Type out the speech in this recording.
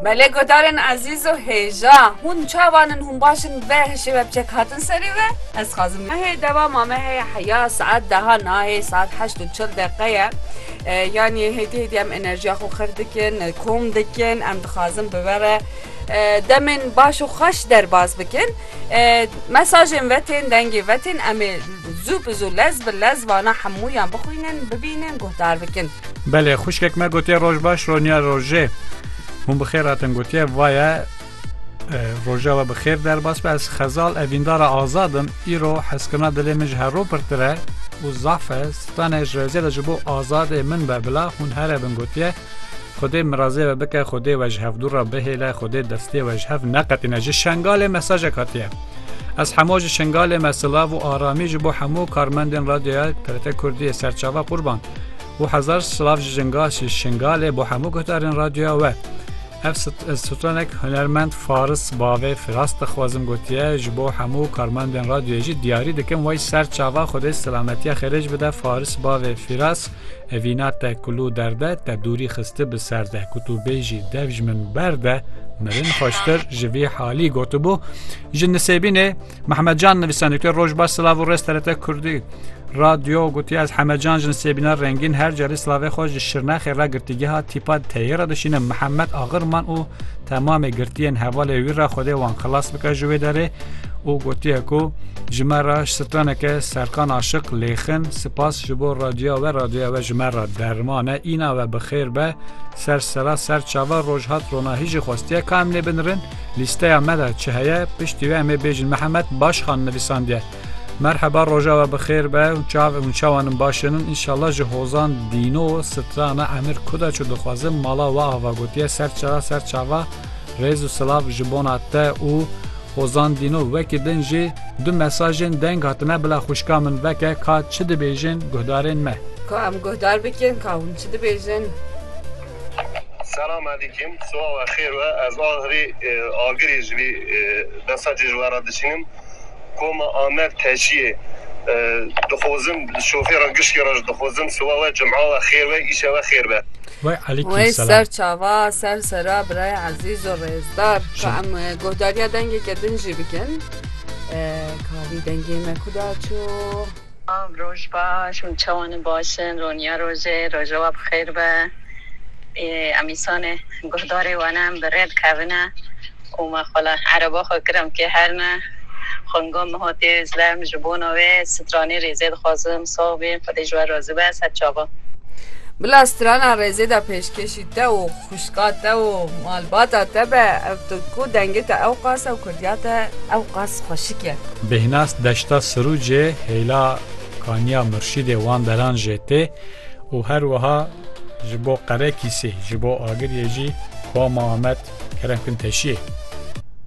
Mele guhdarên ezîz û hêja, hûn çavan in, hûn baş in bê hişê we bi çek hatin serê we? Ez xwazim mehê dewama me heye heya saet deha nayê saet heşt û çil deqe ye. Yanî hêdî hêdî em enerjiya xwe xir dikin, kom dikin, em dixwazin bi we re demên baş û xweş derbas bikin. Mesajên ve tên, dengê ve tên, em ê zû bi zû lez bi lez vana hemûyan bixwînin, bibînin, guhdar bikin. Belê, xwişkek me gotiye roj baş roniya rojê. Hûn bi xêr hatin gotiye vaye roja we bi xêr derbas be ez xezal evîndara azad im îro heskirina dilê min ji herro pirtir e û zaf e stanê ji rêzê de ji bo azadê min be bila hûn here bin gotiye Xwedê min razê we bike, Xwedê we ji hevdû re bihêle, Xwedê destê we ji hev neqetîne. Ji Şengalê mesajek hatiye. Ez hemo ji Şengalê me silav û aramî ji bo hemû karmendên radyoya TRT Kurdî yê serçava qurban. Û hezar silav ji jinga ji Şengalê bo hemû guhdarên radyoya we. Ev stranek hunermend Faris bavê Firas dixwazim gotiye ji bo hemû karmendên radyoyê jî diyarî dikim way serçava Xwedê selametiya xêrêj bide Faris bavê Firas. Evîna te kulû derde te dûrî xisti bi ser de ku tu bêjî dev ji min berde mirin xweştir ji vî halî gotibû ji nisêbînê Mehmedcan nivîsanîtê rojba silav û rêz terete Kurdî radyo gotiya ez hemecan ji nisêbîna rengîn her carî silavê xwe ji şirnexê re girtîgeha tîpa teyê re dişînim Mihemed Axirman û Temamê girtiyên hevalê wî re Xwedê wan xilas bike ji wê derê û gotiye ku ji me re ji straneke Serkan Aşiq lêxin sipas ji bo radyoya we radyoya we ji me re derman e îna we bi xêr be ser sera ser çava roj hat rona hî jî xwestiye ka em lê binirin lîsteya me de çi heye piştî wê em ê bêjin Mihemed Başxan nivîsandiye. Merheba roja we bixêr be û çav û çawan in baş in înşallah ji hozan dîno strana emir kuda çû dixwazim mala we ava gotiye ser çira ser çava rêz û silav ji bona te û hozan dîno wekî din jî du mesajên deng hatine bila xwişka min veke ka çi dibêjin guhdarên me. Ka em guhdar bikin ka hûn çi dibêjin. Selam Alîkim, siwa we xêr be, ez agirî ji vî mesajê ji we re diçînim. Koma Amer Teciyê, Dixwazim şofêra giştî re jî dixwazim siba we, cuma we xêr be, îşe we xêr be. Wey alîkî Wey selam. ser çava ser sera birayê ezîz û rêzdar ka em e, guhdariya dengeke din jî bikin. E, Ka vî dengê me kuda çû? Selav roj baş hûn çawan in baş in roniya rojê rojewa bi xêr be ê em îsane guhdarê wane em bi rê dikevine û me xwela ereba xwe kir em kê her ne xwenga min hatiye zile em ji bona wê stranê rêzê dixwazim sax bîn xwedê ji we razî be ser çavan. Bila strana rêzê de pêşkêşî te û. Xwişka te û malbata te be ew tirku dengê te ewqas e û kurdiya te ewqas xweşik e. Bêhnas deşta Sirucê hêla kaniya Murşîdê wan deran jê tê û her wiha ji bo Qerekîsê, ji bo Agiriyê jî Kuama Amed kerem kin teşiyê.